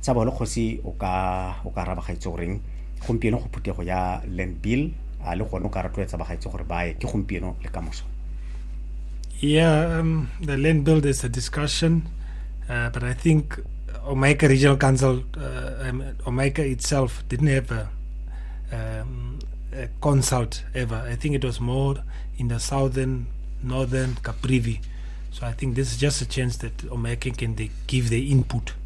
Tsa bolo kgosi o ka o ka araba gaitse goreng gompieno go phuthego ya land bill a le gone o ka rotloetsa bagaitse gore ba ye ke gompieno le ka moso Yeah, um, the land bill is a discussion, uh, but I think Omeka Regional Council, uh, um, Omeka itself didn't have a, um, a, consult ever. I think it was more in the southern, northern Caprivi. So I think this is just a chance that Omeka can they give their input.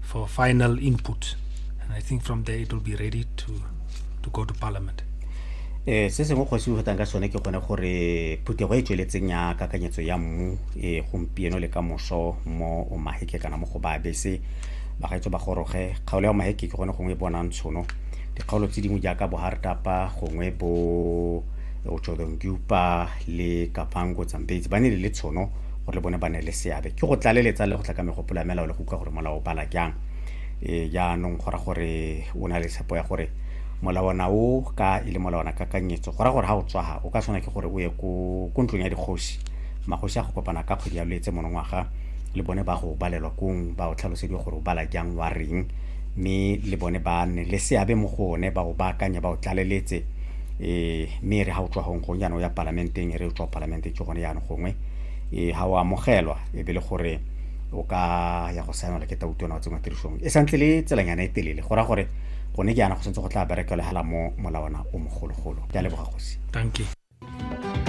for final input. And I think from there it will be ready to, to go to parliament. eh se sengwe kgosi o fetang ka sone ke gone gore phuthego e tsweletseng ya kakanyetso ya mmu e gompieno le ka moso mo o maheke kana mo go ba bese bagaetso ba goroge kgaolo ya maheke ke gone gongwe e bonang tshono dikgaolo tse dingwe jaaka bohartapa gongwe bo otshodongupa le kapango tsambetsi ba ne le le tshono gore le bone ba ne le seabe ke go tlaleletsa le go tla ka megopolo ya melao le go utlwa gore molao o bala jang e jaanong go ra gore o na le tshepo ya gore molawana o ka e le molawana kakanyetso go ra gore ga o tswaga o ka tshwana ke gore o ye ko ntlong ya dikgosi magosi a go kopana ka kgwedi ya loetse monongwaga le bone ba go balelwa kong ba o tlhalosediwa gore o bala jang wa reng mme le bone ba nne le seabe mo go one ba o baakanya ba o tlaleletse um mme re ga o tswa gong gong jaanong ya palamenteng e re o tswa palamenteng ke gone jaanong gongwe e ga o amogelwa e be le gore o ka ya go saenela ke tautona wa tsengwa tirisong e santse le tselanyana e telele go ra gore gone ke yana go santse go tla berekelegela mo molawana o mogologolo ke a leboga gosi thank you